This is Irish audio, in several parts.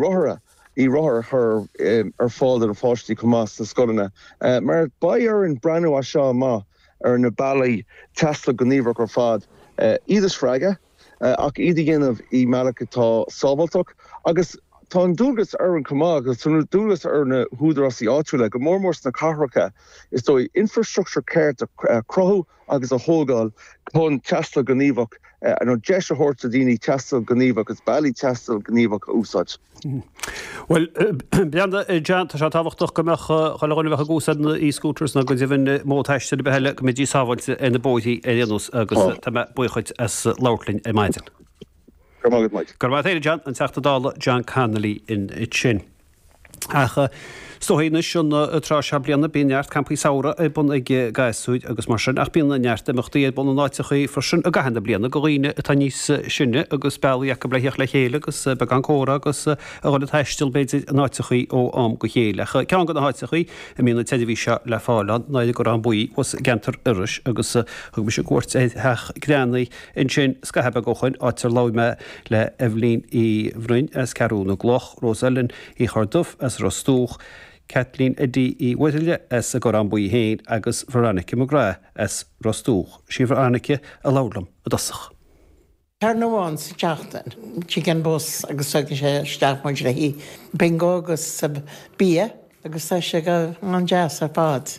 rothair, e-rothair a chur ar fáil do na páistí chomh maith sna scoileanna mar beidh orainn breathnú as seo amach ar na bealaí taistil gníomhacha ar fad, iad a spreagadh ach iad a dhéanamh i mbealach atá sábháilteach agus tá an dualgas orainn chomh maith agus tá dualgas ar na húdarásaí áitiúla, go mór mór sna cathracha is dóigh, infreastruchtúr ceart a chruthú. agus a thógáil chun taisteal gníomhach, nó deis a thabhairt do dhaoine taisteal gníomhach agus bealaí taistil gníomhach a úsáid. Bhuel, m'anam, John, tá sé tábhachtach go mbeadh chuile dhuine a bheadh ag úsáid na e-scooters nó go deimhin modh taistil ar bith eile, go mbeidís sábháilte ar na bóithrí ar aon nós agus tá mé buíoch dhuit as labhairt linn ar maidin. Go raibh maith agat, Mike. Go raibh maith a't, a John, an Teachta Dála John Connolly ansin. Ach is dóigh anois, an tráth seo bliana, bíonn neart campaí samhraidh ar bun ag gasúir agus mar sin, ach bíonn neart imeachtaí ar bun in áiteachaí freisin i gcaitheamh na bliana do dhaoine atá níos sine agus bealaí acu le theacht le chéile agus beagán comhrá agus a dhul ag taisteal, b'fhéidir, in áiteachaí ó am go chéile. Ach ceann de na háiteachaí a mbíonn an tseirbhís seo le fáil ann ná ar an gCorrán Buí, thíos i gceantar Iorrais, agus thug mise cuairt ar Theach Greannaí, Ansin, scaitheamh beag ó shoin, áit ar labhair mé le Eibhlín Uí Bhroin as Ceathrú na gCloch, Rose Ellen Uí Chorrduibh as Ros Dumhach, Kathleen Eddie Uí Mhuirthile as an gCorrán Buí féin agus Veronica McGrath as Ros Dumhach. Sí Veronica a labhair liom i dtosach. Ceann amháin sa tseachtain, tig an bus agus tugann sé isteach muid le haghaidh bingo agus bia agus tá sé go han-deas ar fad.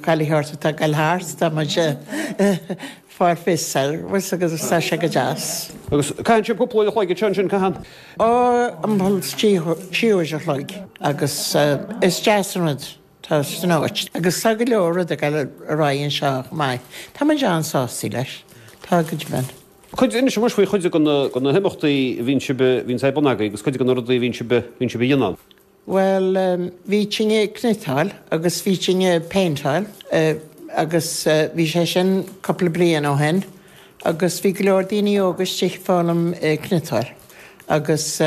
Caillfidh ort a togáil thart, tá muid a' fáil bus service agus tá sé go deas. Agus caitheann sibh cúpla uair a chloig anseo ansin, caitheann? Ó, timpeall trí, trí uair a chloig agus is deas an rud, tá san áit agus tá go leor rud ag dul ar aghaidh anseo chomh maith, tá muid an-sásta leis, tá go deimhin. Cuid, inis dom faoi chuid de na, de na himeachtaí a bhíonn sibh, bhíonn siad ar bun agaibh agus cuid de na rudaí a bhíonn sibh, bhíonn sibh a dhéanamh ann. Bhuel, bhí duine ag cniotáil agus bhí duine ag péinteáil agus bhí sé sin cúpla bliain ó shin agus bhí go leor daoine óga istigh ag foghlaim cniotáil agus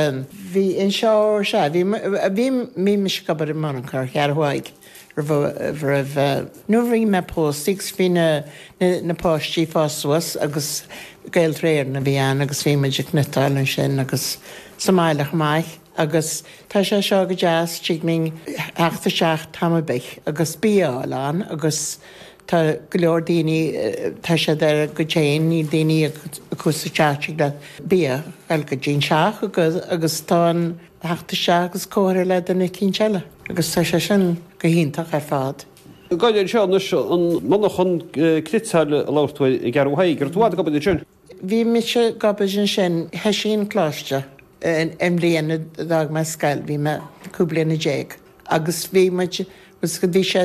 bhí, anseo, sea, bhí, bhí, bhí mise ag obair i monarchan Cheathrú Thaidhg roimh, roimh, nuair a bhí mé pósta agus bhí na, na páistí ag fás suas agus Gaeltarra Éireann a bhí ann agus bhí muid ag cniotáil ansin agus sa mbaile chomh maith. Agus tá sé seo go deas tig linn theacht isteach am ar bith agus bia a fháil ann agus tá go leor daoine, tá siad ar a gcuid féin, níl duine acu sa teach, tig leat bia a fháil go dtí'n teach agus agus tá an theacht isteach agus comhrá le duine eicínt eile agus tá sé sin go hiontach ar fad. Gabh i leith anseo anois, an monarchan cniotála a labhair tú air i gCeathrú Thaidhg, an raibh tú i bhfad ag obair ansin? Bhí mise ag obair ansin, thoisigh an coláiste an bhliain a d'fhág mé scoil, bhí mé cúig bliana déag agus bhí muid, bhí sé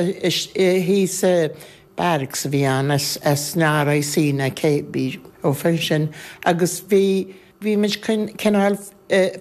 thíos sa barracks a bhí ann as na RIC na cé bhí ó fin sin agus bhí, bhí muid cineál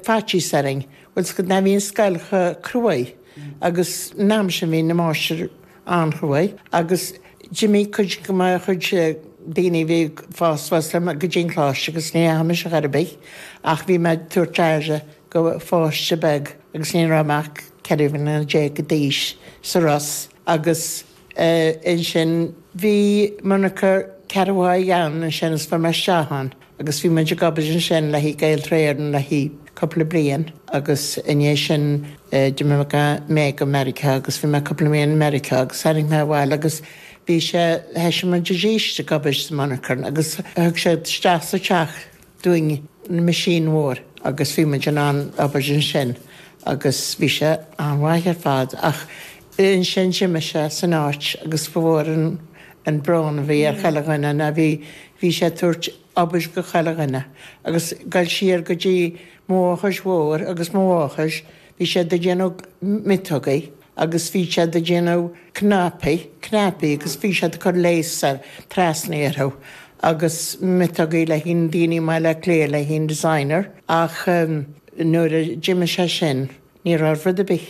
faitíos orainn, bhfuil fhios agat ná bhí an scoil chomh cruaidh agus an am sin bhí na máistir, an-chruaidh agus d'imigh cuid go maith chuid daoine a bhí ag fás suas liom go dtí an choláiste agus ní dheachaidh mise chor ar bith ach bhí mé ag tabhairt aire go pháiste beag agus ní raibh mé ach ceithre bliana déag d'aois sa Ros agus ansin bhí monarcha Gaeltarra Éireann ansin agus fuair mé isteach ann. agus bhí muid ag obair ansin le haghaidh Gaeltarra Éireann le haghaidh cúpla bliain agus i ndiaidh sin d'imigh mé go Meiriceá agus bhí mé cúpla mí i Meiriceá agus tháinig mé abhaile agus bhí sé, thoisigh muid arís ag obair sa monarchan agus thug siad isteach sa teach dúinn na machine mhór agus bhí muid in ann obair ansin agus bhí sé an-mhaith ar fad ach ansin d'imigh sé as an áit agus ba mhór an an brón a bhí ar chuile dhuine ná bhí, bhí sé ag tabhairt obair go chuile dhuine agus goil siar go dtí Muaghais Mhóir agus Muaghais, bhí siad ag déanamh miotógaí agus bhí siad ag déanamh cnaipí, cnaipí agus bhí siad ag cur lace ar, trasna orthu agus miotógaí le haghaidh daoine i mBaile Átha Cliath le haghaidh an designer ach nuair a d'imigh sé sin ní raibh rud ar bith.